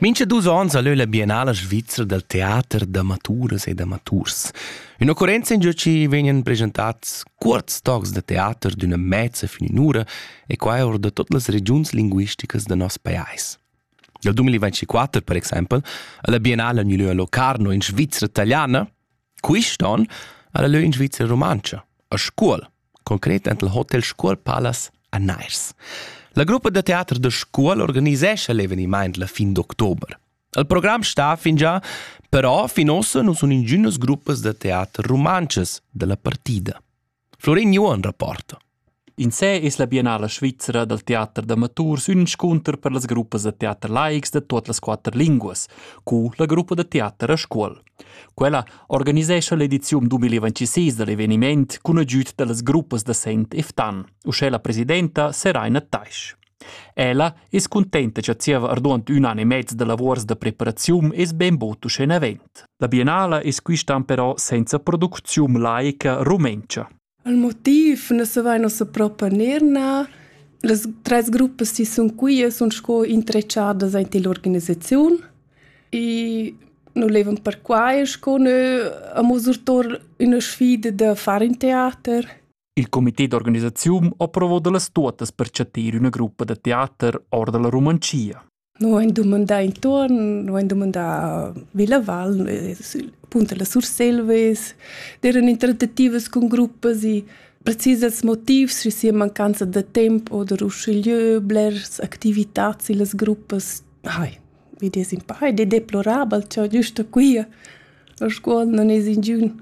Mincha dus ons ha leu la Biennala svizra dal teater d'amaturas e d'amaturs. Ün'occurrenza in giö chi vegnan presentats cuorts tocs da teater d'üna mezza fin in ura e quai or da tot las regiuns linguisticas da nos pajais. Dal 2024, per exaimpel, ha la Biennala gnü lö a Locarno in Svizra taliana Quist on ha la lö in Svizra rumantscha, a Scuol, concret ent il Hotel Scuol Palace a Nairs. La gruppa da teater da Scuol organisescha l'evenimaint la fin d'october. Il program sta fingià, però fin ossa nu sun ingünas gruppas da teater rumantschas da la partida. Florin Juon rapporta. In sé es la Biennala svizra dal teater d'amatur s'inscunter per las gruppas da teater laics da tuot las quatter linguas, cu la gruppa da teater a Scuol. Quella organisescha l'ediziun 2026 da l'eveniment cun agüd da las gruppas da Sent e Ftan. Uschè la presidenta Seraina Taisch. Ella es cuntenta cha zieva arduond ün an e mez da lavuors da preparaziun es bainbod uschè navent. La biennala es quistan però senza producziun laica rumentscha. Il motiv nu savaina ussa propi gnir nà. Las tres gruppas chi sun quia sun sco intrechadas aint ill'organisaziun e nu levan perquai sco nö amo surtour üna sfida da far ün teater. Il comité d'organisaziun ha provò da las tuottas per chattir üna gruppa da teater or da la Romancia. Noi han dumandà intorno, noi han dumandà Villa Val, appunto la Surselves, erano intertativas con gruppas e precisas motivs, se sia mancanza de tempo oder usciglieu, blers activitats e las gruppas, ai, vi des in pai, de deplorabel, ciò giusto qui, la scuola non es in giun.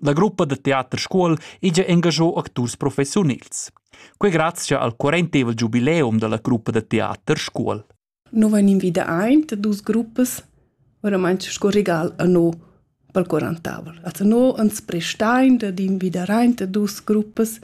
La gruppa da teater Scuol ija engagiò acturs professiunils. Quei grazia al quarentevel giubileum dalla gruppa da teater Scuol. Noi van invida aint dus gruppas, oramai sco regal a no pel quarantavel. Also no ans prestain da invida aint dus gruppas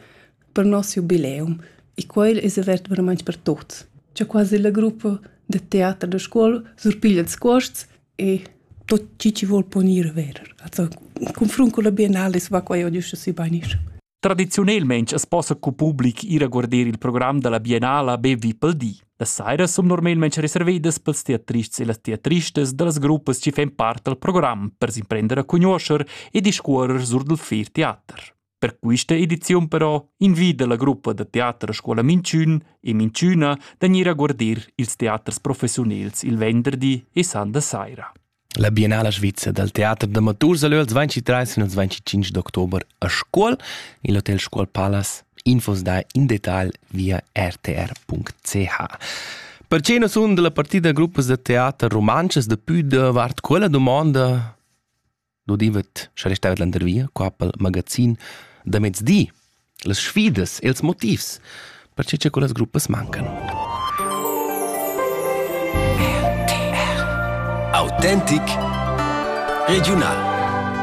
per nos jubileum e quel es avert veramente per tuts. C'è quasi la gruppa de teater da scuola surpiglia ils cuosts e tot chi chi vol ponir verer. Also, confront con la biennale va qua io giusto si banish. Tradiziunelmaing as possa cu public ir a guarder il program da la Biennala be vi pel di. Las sairas sun normalmaing reservedas pels teatrists e las teatristas da las gruppas chi fan part dal program per s'imprender a cugnuoscher e discuorrer sur dal fer teater. Per questa ediziun però invida la gruppa da teater a scuola Minchün e Minchüna da gnir a guardir ils teaters professiunels il venderdi e sanda saira. La Biennala svizzer dal teater d'amaturs a lö als 23 e als 25 d'october a Scuol, il Hotel Scuol Palace. Infos da in detal via rtr.ch. Perché non sun della partida gruppas da teater romances da pü davart quella domanda L'udivet, scha restava landervia qua pel magazin da mezdi. Las sfidas e'ls motivs, perche cha quellas gruppas mancan. RTL. Autentic regiunal.